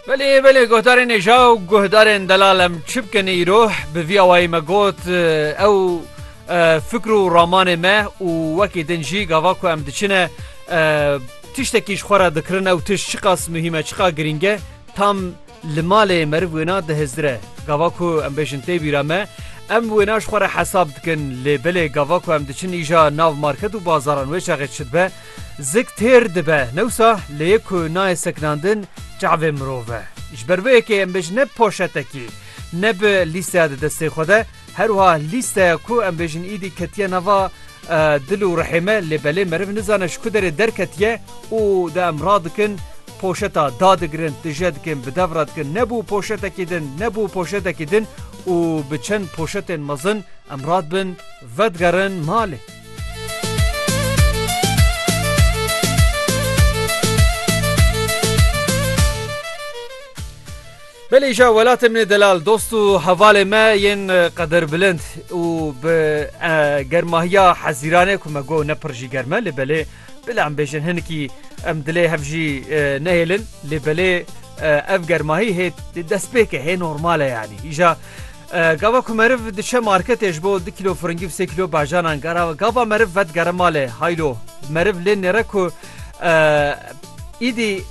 Belê belê guhdarên êja û guhdarên delal em çi bikin îro bi vî awayî me got ew fikr û ramanê me û wekî din jî gava ku em diçine tiştekî ji xwe re dikirin ew tişt çiqas muhîm e çiqa girîng e tam li malê meriv wêna dihizdire e gava ku em bêjin tê bîra me em wêna ji xwe re hesab dikin lê belê gava ku em diçin îja nav market û bazaran wê çaxê çi dibe Zik têr dibe newsa lê yê ku nayê sekinandin çavê mirov e. Ji ber vê yekê em bêjin ne poşetekî, ne bi lîsteya di destê xwe de, her wiha lîsteya ku em bêjin îdî ketiye nava dil û rihê me lê belê meriv nizane ji ku derê derketiye û di em radikin poşeta da digirin, tije dikin, bi dev re dikin, nebû poşetekî din, nebû poşetekî din û bi çend poşetên mezin em radibin vedigerin malê. Belê îşa welatê min ê delal dost û hevalê me yên qederbilind û bi germahiya hezîranê ku me got ne pir jî germe lê belê bila em bêjin hinikî em dilê hev jî nehêlin lê belê ev germahî hê destpêke hê normale yanî îşa Gava ku meriv diçe marketê ji bo du kîlo firingî û sê kîlo bajanan gara gava meriv vedigere malê. Haylo, meriv lê nêre ku îdî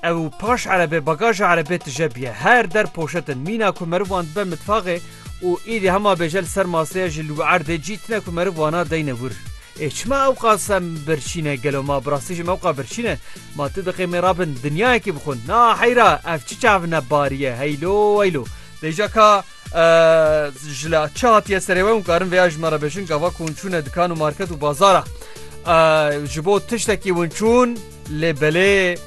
ew paş erebê bagaja erebê tije biye. Her der poşet in. Mîna ku meriv wan dibe mitfaxê û îdî hema bêje li ser maseye ji li wî erdê cî tine ku meriv wana deyne wir. Ê çima ewqas em birçîn e gelo ma bi rastî jî mewqa birçîn e? Ma tu diqê mêrabin dinyayekî bixwin. Na heyra ev çi çavine barî ye heylo weylo. Deja ka ji la çi hatiye serê we û karin vêya ji me re bêjin gava ku hûn çûne dikan û market û bazara ji bo tiştekî hûn çûn lê belê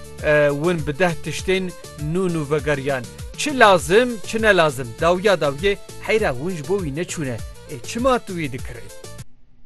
hûn bi deh tiştên nû nû vegeriyan çi lazim çi ne lazim dawiya dawiyê heyra hûn ji bo wî neçûne ê çima tu wî dikirê.